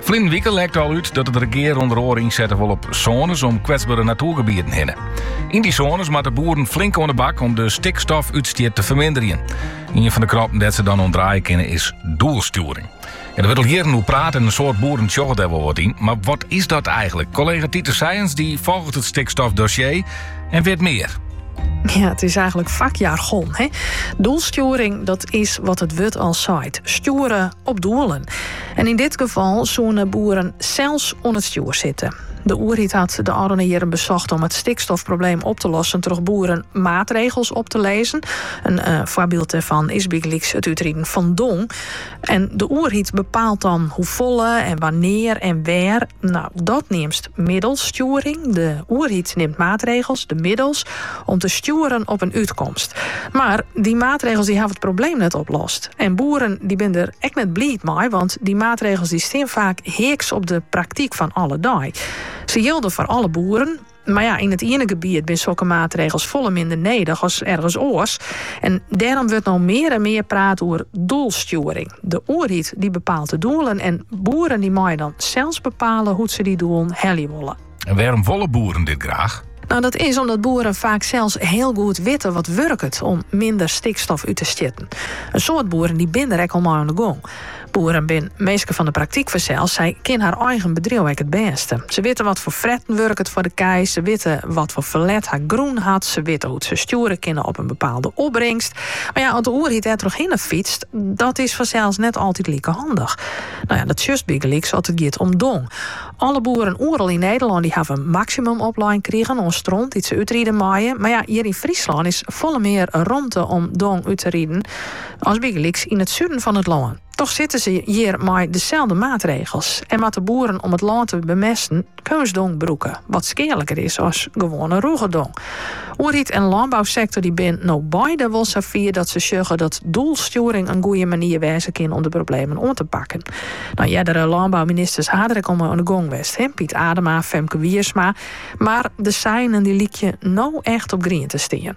Ferleden wike lekt al út dat it regear ûnder oare ynsette wol op sônes om kwetsbere natoergebieten hinne. Yn dy sônes moatte boeren flink oan de bak om de stikstofútstiet te ferminderjen. Ien fan de krappen dêr't se dan oan draaie kinne is doelstjoering. Der wurdt al jierren oer praat en in soad boeren sjogge dêr wol wat yn. Mar wat is dat eigenlik? Kollega Tiete Sijens dy folget het stikstofdossier en wit mear. Ja, it is eigenlik fakjargon. Hè? Doelstjoering, dat is wat it wurd al seit. Stjoere op doelen. En yn dit gefal soene boeren sels oan it stjoer sitte. De oerheid hat de ôfrûne jierren besocht om it stikstofprobleem op te lossen troch boeren maatregels op te lizzen. In eh, foarbyld dêrfan is bygelyks it útriden fan dong. En de oerheid bepaalt dan hoefolle en wannear en wêr. Nou, dat neamst Middelstjoering, de oerheid nimt maatregels, de middels, om te stjoeren op in útkomst. Mar dy maatregels dy hawwe it probleem net oplost. En boeren dy binne der ek net bliid mei, want dy maatregels dy stean faak heaks op de praktyk fan alle dei. Se jilde foar alle boeren, mar ja, yn it iene gebiet binne sokke maatregels folle minder nedich as ergens oars. En dêrom wurdt no mear en mear praat oer doelstjoering. De oerheid dy bepaalt de doelen en boeren dy meie dan sels bepale hoe't se dy doelen helje wolle. En wêrom wolle boeren dit graach? Nou, dat is omdat boeren faak sels hiel goed witte wat wurket om minder stikstof út te stjitten. In soad boeren dy binne der ek al mei oan de gong. Boeren binne minsken fan de praktyk fansels, sy kinne har eigen bedriuw ek it bêste. Se witte wat foar fretten wurket foar de kij, se witte wat foar ferlet har grûn hat, se witte hoe't se stjoere kinne op in bepaalde opbringst. Mar ja, as de oerheid dêr trochhinne fytst, Dat is fansels net altyd like handich. No ja, dat sjochst bygelyks as it giet om dong. Alle boeren oeral yn Nederlân dy hawwe in maksimum oplein krigen oan stront dy't se útride meie. Mar ja, hjir yn Fryslân is folle mear romte om dong út te riden as bygelyks yn it suden fan it lân. Toch sitte se hjir mei deselde maatregels en moatte boeren om it lân te bemesten. Keunstdong brûke, wat skealiker is as gewoane rûge dong. Oerheid en lânbousektor dy binne no beide wol sa fier dat se sjogge dat doelstjoering in goeie manier wêze kin om de problemen oan te pakken. Nou, eardere lânbouministers ha der ek al mei oan de gong west hè, Piet Adema, Femke Wiersma, mar de seinen dy lykje no echt op grien te stean.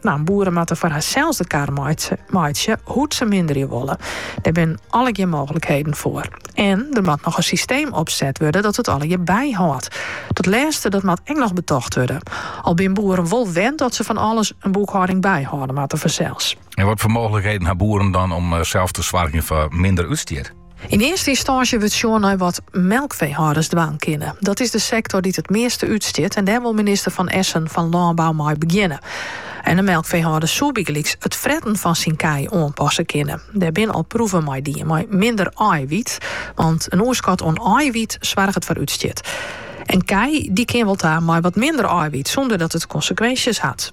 Nou, boeren moatte foar harsels de kar meitsje hoe't se minderje wolle. Der binne allegear mooglikheden foar. En der moat noch in systeem opset wurde dat it allegear byhâldt. Dat lêste dat moat ek noch betocht wurde. Al binne boeren wol wend dat se fan alles in boekhâlding byhâlde moatte fansels. En wat foar mooglikheden ha boeren dan om eh, sels te soargjen foar minder útstiet? Yn earste ynstânsje wurdt sjoen nei wat melkfeehâlders dwaan kinne. Dat is de sektor dy't it measte útstjit en dêr wol minister Van Essen fan Lânbou mei begjinne. En in melkfeehâlder soe bygelyks it fretten fan syn kij oanpasse kinne. Dêr binne al proeven mei dien mei minder aaihwyt, want in oerskot oan aaihwyt soarget foar útstjit. In ko dy kin wol ta mei wat minder aaihwyt sûnder dat it konsekwinsjes hat.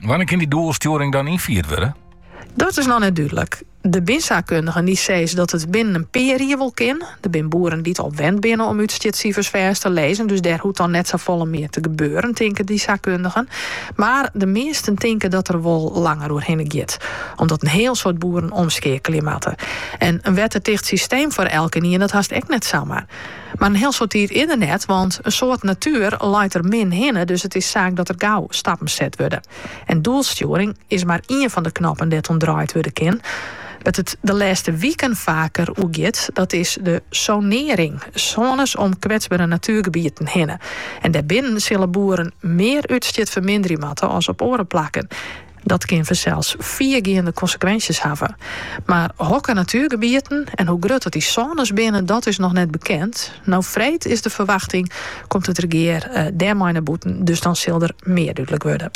Wannear kin die doelstjoering dan ynfierd wurde? Dat is noch net dúdlik. Der binne saakkundigen dy sizze dat it binnen in pear jier wol kin. Der bin boeren dy't al wend binne om útstjitsifers fêst te lizzen, dus dêr hoecht dan net sa folle mear te gebeuren, tinke dy saakkundigen. Mar de measten tinke dat der wol langer oer hinne giet, omdat in hiel soad boeren omskeakelje moatte. En in wettertiсht systeem foar elkenien, dat hast ek net samar. Mar in hiel soad tiid is der net, want in soad natuer leit der min hinne, dus it is saak dat der gau stappen set wurde. En doelstjoering is mar ien fan de knoppen dêr't oan draaid wurde kin. Wêr't it de lêste wiken faker oer giet, dat is de sonearing, sônes om kwetsbere natuergebieten hinne. En dêrbinnen sille boeren mear útstjit ferminderje moatte as op oare plakken. Dat kin fansels fiergeande konsekwinsjes hawwe. Mar hokker natuergebieten en hoe grut dat dy sônes binne, dat is noch net bekend. No freed is de ferwachting, komt it regear dêrmei nei bûten, dus dan sil der mear dúdlik wurde.